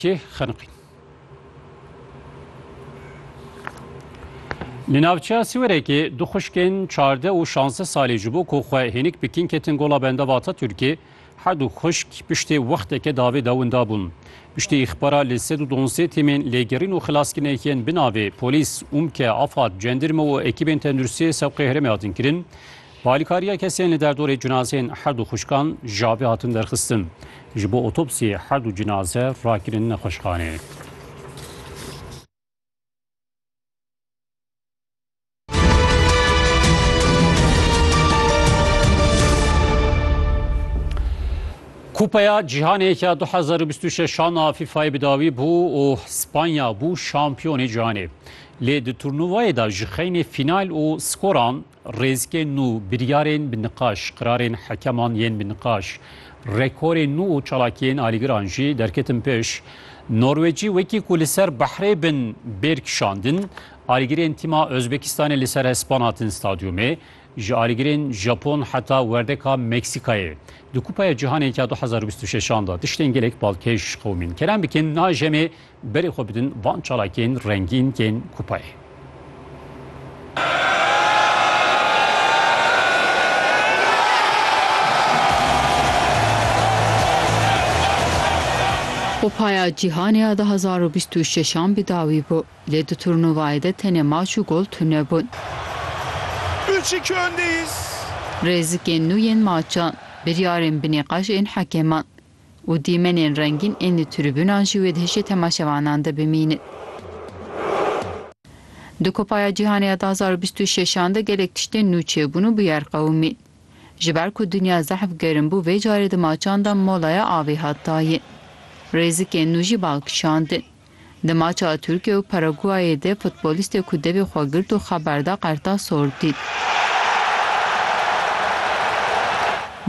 Kê xeniqîn. Li navçeya Siwerekê du xuşkên çardeh û şazdeh salî ji bo ku xwe hênik bikin ketin gola benda bi Ataturkê. Her du xuşk piştê wexteke davê de winda bûn. Piştî îxbara li sed û duwazdeh tîmên lêgerîn û xilaskirinê yên bi navê polîs, umke, afad, cendirme û ekîbên tenduristiyê sewqê herêmê hatin kirin. Bi alîkariya kesên li derdorê cinazeyên her du xwişkan jabê hatin derxistin. Ji bo otopsiyê her du cinaze rakirin nexweşxaneyê. Kupeya Cîhanê ya 2026 a FIFA'yê bi dawî bû û Spanya bû şampiyonê cîhanê. Lê di turnuvayê de ji xeynê fînal û skoran Rêzikên nû, biryarên bi niqaş, qirarên hekeman yên bi niqaş, rekorên nû û çalakiyên alîgiran jî derketin pêş. Norwecî wekî ku li ser behrê bin bêr kişandin, alîgirên tîma Ozbekistanê li ser hespan hatin stadyumê, ji alîgirên Japon heta werdeka Meksîkayê. Di Kupaya Cîhanê ya du hezar û bîst û şeş an de tiştên gelek balkêş qewimîn. Kerem bikin, na jemê Berê xwe bidin van çalakên rengîn yên kupayê. Kupaya Cîhanê ya du hezar û bîst û şeş an bi dawî bû, lê di turnuvayê de tenê maç û gol tune bûn. Rêzikên nû yên maçan, biryarên binîqaş ên hekeman, û dîmenên rengîn ên li tribûnan jî wê di hişê temaşevanan de bimînin. Di Kupaya Cîhanê ya du hezar û bîst û şeş an de gelek tiştên nû çêbûn û bûyer qewimîn. Ji ber ku dinya zehf germ bû vê carê di maçan de molaya avê hat dayin. Rêzikên nû jî bal kişandin. Di maça Tirkiye û Paraguayê de futbolîstê ku devê xwe girt û xeber da qerta sor dît.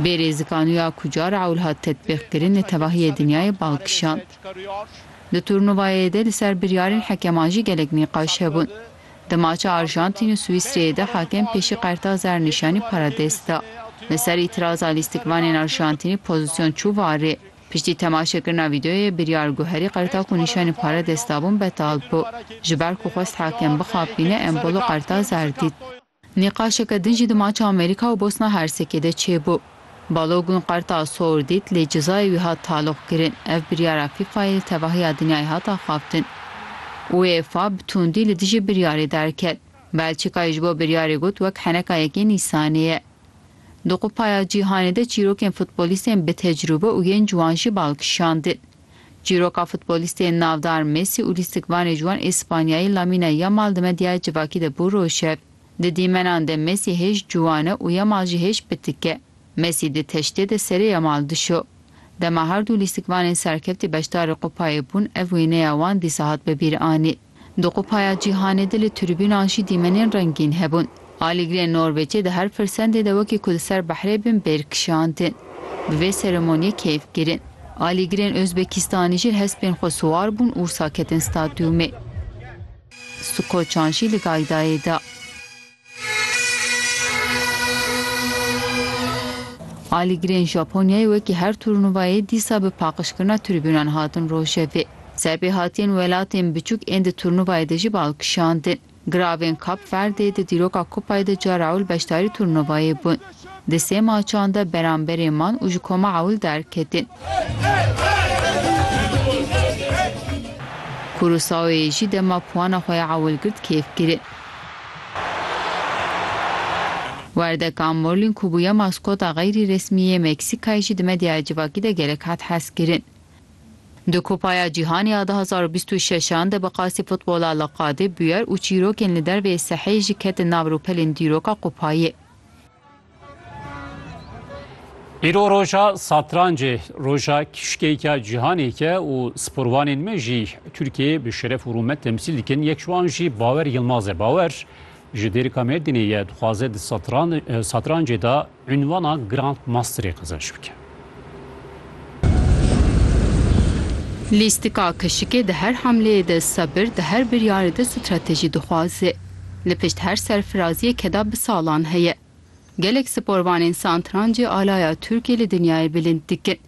Bê rêzikanuya ku cara ewl hat tetbîqkirin li tevahiyê dinyayê bal kişand. Di turnuvayê de li ser biryarên hekeman jî gelek nîqaş hebûn. Di maça Arjantîn û Swîsreyê de hakem pêşî qerta zernîşanî para dest da. Li ser îtiraza lîstikvanên Arjantînî pozîsyon çû warê. Piştî temaşekirina vîdeoyê, biryar guherî qerta ku nîşanî pare dest dabûn betal bû. Ji ber ku xwest hakim bixapîne, embolo qerta zer dît. Nîqaşeke din jî di maça Amerîka û Bosna Hersekê de çêbû. Balogun qerta sor dît, lê cizayê wî hat taloqkirin. Ev biryara FIFA'yê li tevahiya dinyayê hat axaftin. UEFA bi tundî li dijî biryarê derket. Belçîkayê ji bo biryarê got wek heneka yekê Nîsanê ye. Di Kupaya Cîhanê de çîrokên futbolîstên bi tecrûbe û yên ciwan jî bal kişandin. Çîroka futbolîstê navdar Mesî û lîstikvanê ciwan Îspanyayî Lamine Yamal di medyaya civakî de bû roşev. Di dîmenan de Mesî hêj ciwan e û Yamal jî hêj pitik e. Mesî di teştê de serê Yamal dişo. Dema her du lîstikvanên serkeftî beşdarê kupayê bûn ev wêneya wan dîsa hat bi bîr anî. Di Kupaya Cîhanê de li tribûnan jî dîmenên rengîn hebûn. Alîgirên Norwêcê di her firsendê de wekî ku di ser behrê bin bêr kişandin. Bi vê seremoniyê keyf kirin. Alîgirên Ozbekistanî jî li hespên xwe siwar bûn û wisa ketin stadyûmê. Skoçan jî li Gaydayê da. Alîgirên Japonyayê wekî her turnuvayê dîsa bi paqijkirina tribûnan hatin rojevê. Serpêhatiyên welatên biçûk ên di turnuvayê de jî bi al kişandin. Giravên Kap Verdê di dîroka kupayê de cara ewil beşdarî turnuvayê bûn. Di sê maçan de beramberê man û ji koma ewil derketin. Kurûsaoyê jî dema puana xwe ya ewil girt kêfkir e. Werdeka Morlin ku bûye maskota xeyrî resmî yê Meksîkayê jî di medyaya civakî de gelek hat hezkirin. Di Kupaya Cîhanê ya du hezar û bîst û şeş an de bi qasî futbola li qadê bûyer û çîrokên li derveyê seheyê jî ketin nav rûpelên dîroka kupayê. Îro roja satrancê, roja kişkeyka cîhanêke û sporvanên me jî Tirkiyeyê bi şeref û rûmet temsîl dikin. Yek ji wan jî Bawer Yilmaz e. Bawer ji Dêrika Mêrdînê ye, dixwaze di satrancê de unvana Grand Masterê qezenç bike. Lîstika keşikê di her hamleyê de sebir, di her biryarê de stratejî dixwaze. Li pişt her serfiraziyeke de bi salan heye. Gelek sporvanên santrancê alaya Tirkiyê li dinyayê bilind dikin.